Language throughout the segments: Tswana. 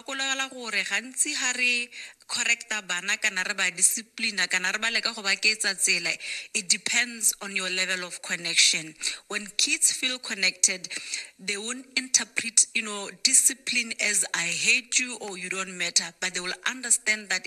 Gakologelwa gore gantsi ga re correcta bana kana re ba disciplina kana re ba leka go ba keetsa tsela, it depends on your level of connection. When kids feel connected, they won't interpret you know, discipline as I hate you or you don't matter but they will understand that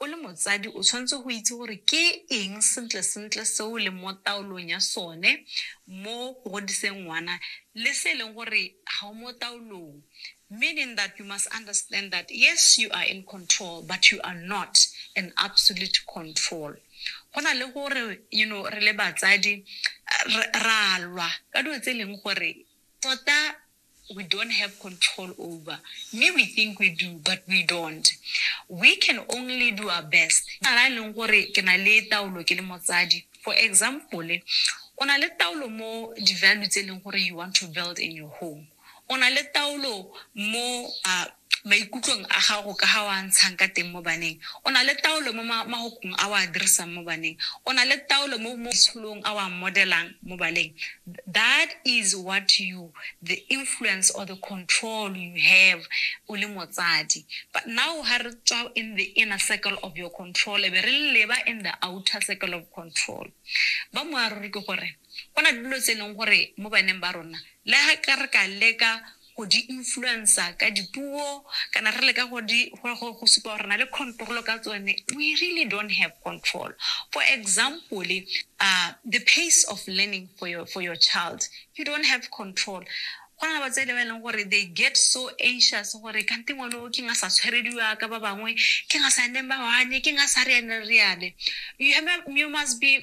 O le motsadi o tshwanetse go itse gore ke eng sentle-sentle se o leng mo taolong ya sone mo go godiseng ngwana le se e leng gore ga o mo taolong. Meaning that you must understand that yes you are in control but you are not in absolute control. Go na le gore you know re le batsadi ra lwa ka dilo tse e leng gore tota we don't have control over. Me, we think we do, but we don't. We can only do our best. Ala leng gore ke na le taolo ke le motsadi. For example, o na le taolo mo di-value tse e leng gore you want to build in your home. O na le taolo mo uh, maikutlong a gago ka ga o a ntshang ka teng mo baneng, o na le taolo mo ma, magokong a o a dirisang mo baneng, o na le taolo mo, mo maitsholong a o a modelang mo baleng. That is what you, the influence or the control you have o le motsadi. But now ha re tswa in the inner circle of your control, e be re leba in the outer circle of control. Ba moaruri ke gore go na le dilo tse e leng gore mo baneng ba rona le ha ka re ka leka go di influencer ka dipuo kana re leka go di go supa gore re na le control ka tsone we really don't have control for example uh, the pace of learning for your, for your child you don't have control go na ba tse le ba e leng gore they get so anxious gore kante ngwane o ke nga sa tshwerediwa ka ba bangwe ke nga sa neng ba wane ke nga sa reane reane you, have, you must be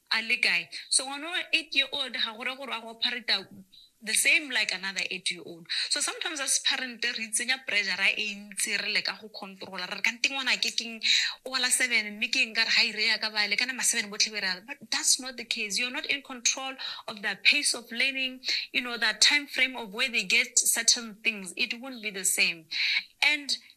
a le kae so ngwana wa eight year old ga gore gore a go ophareta the same like another eight year old so sometimes as parent re itsenya pressure e ntsi re leka go controla re re kante ngwana ke keng o wala seven mme ke eng ka re ga ire ya ka bale kana ma seven botlhe be re ale but that's not the case you're not in control of the pace of learning you know the time frame of where they get certain things it won't be the same and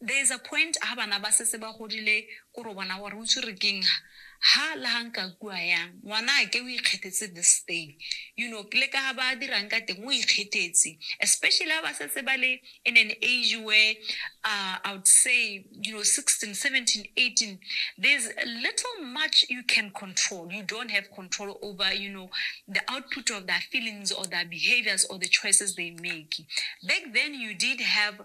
There is a point ha bana ba setse ba godile ko ro bona gore o itse re keng ha ha la ha nka kua yang ngwana a ke o ikgethetse this thing you know le ka ha ba dirang ka teng o ikgethetse especially ha ba setse ba le in an age where uh, i would say you know 16 17 18 there's little much you can control you don't have control over you know the output of their feelings or their behaviors or the choices they make back then you did have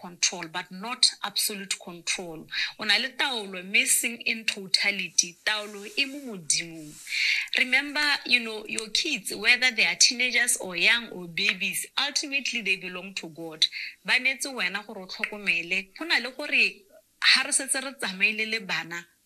control but not absolute control. O na le taolo mme seng in totality. Taolo e mo modimong. Remember, you know, your kids, whether they are teenagers or young or babies, ultimately they belong to God. Ba neetse wena gore o tlhokomele. Go na le gore ha re setse re tsamaile le bana,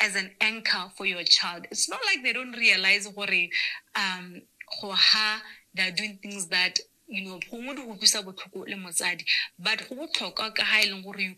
as an anchor for your child. It's not like they don't realize gore um go ha they're doing things that you know gongwe di go utlwisa botlhoko le motsadi but go botlhokwa ka ga e leng gore you